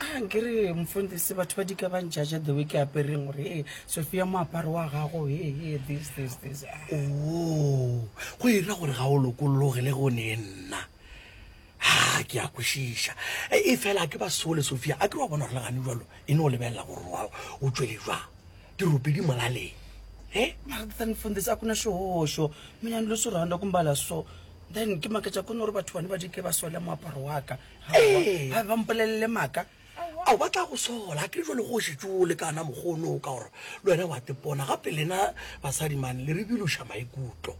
a nke re mfundisi batho ba di ka ba njaja the way ke apereng gore ee sophia moaparo wa gago ee ee this this this ah. oo go e ra gore ga o lokologe le go ne nna ha ke a kwešiša E- e fela ke ba sole sophia a ke wa bona gore le gane jalo e ne o lebelela gore wa o tšwele jwa dirope di molaleng e mara then mfundisi a ku na xihoxo mina ni lo swi rhandza ku mbala so then ke maketa ku ni ri vathu vani va dike va sole moaparo wa ka ga ba mpolelele maaka ao ba tla go sola ke jo le go šetše o lekana mokgono o ka gore le wena wa tepona gape lena basadi mane le re biloša maikutlo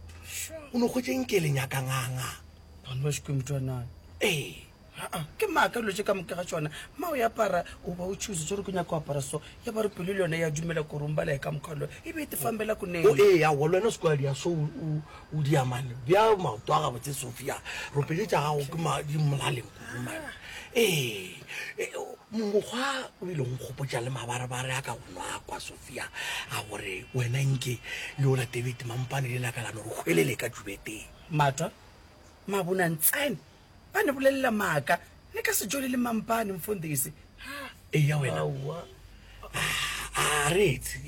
o ne kgwetseng ke le nyakanganga ee ke maaka dilo tse ka moka ga tsona ma o apara o ba o tshuse tsere ko nyaka go apara so ya ba re pelo le yone ya dumela korong ba lae ka mokgwalo e be e tefambela ko neng ee awa le wena se ko ya dia so O dia man bea maoto a gabotse Sophia ropele tša gago ke ma di molaleng kudu man ee mokgwa o bile go nkgopotša le mabarebare a ka go nwa kwa Sophia a gore wena nke le o latebete mampane le lakalano re hwelele ka tšubeteng mata mabonang tsene Ba ne bolelela maaka. Le ka se tšwelele mampane, Mfundisi. Eya wena. A re etse.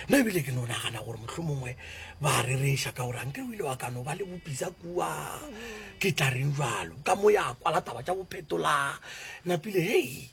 Nna ebile ke no nagana gore mohlomongwe ba a rereša ka gore anke o ile wa ka no ba le bopisa kua. Ke tla reng jalo? Ka mo ya kwala taba tša bophetola napile. Hei!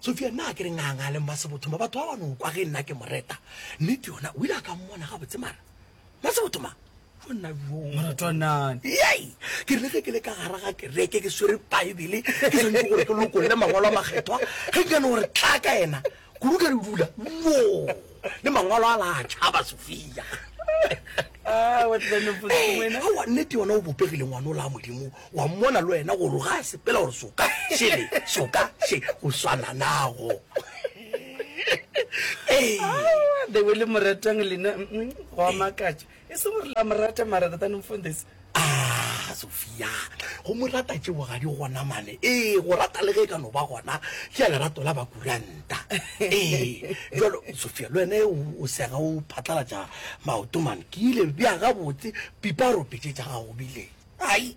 Sofia, nna a ke re nganga le Mmasebothoma batho ba ba no kwa ge nna ke mo reta nnete yona o ile a ka mmona gabotse mara Mmasebothoma jo nna jo moratwanane yei ke rile ge ke le ka gara ga kereke ke swere baebele ke santse gore ke lokolole mangwalo a makgethwa ge ke kane gore tla ka ena kudu ka re dula wo le mangwalo a la tšhaba Sofia Ah, what the nopos wena. awa nnete yona o bopegile ngwane o la modimo Wa mmona le wena gore ga a sepela gore soka šele soka še go swana nago. Aowa, the way le mo ratang lena mm, mm, go a makatša. E se gore la mo rata mara rather than mfundisi. Ah, Sofia, go mo rata tšeo ga di gona mane. Ee, go rata le ge e ka no ba gona ke ya lerato la bakurante. ta ee jalo sofia le wene o sega o phatlalatša maoto mane ke ile bja gabotse pipa ropetše tša gago bile ai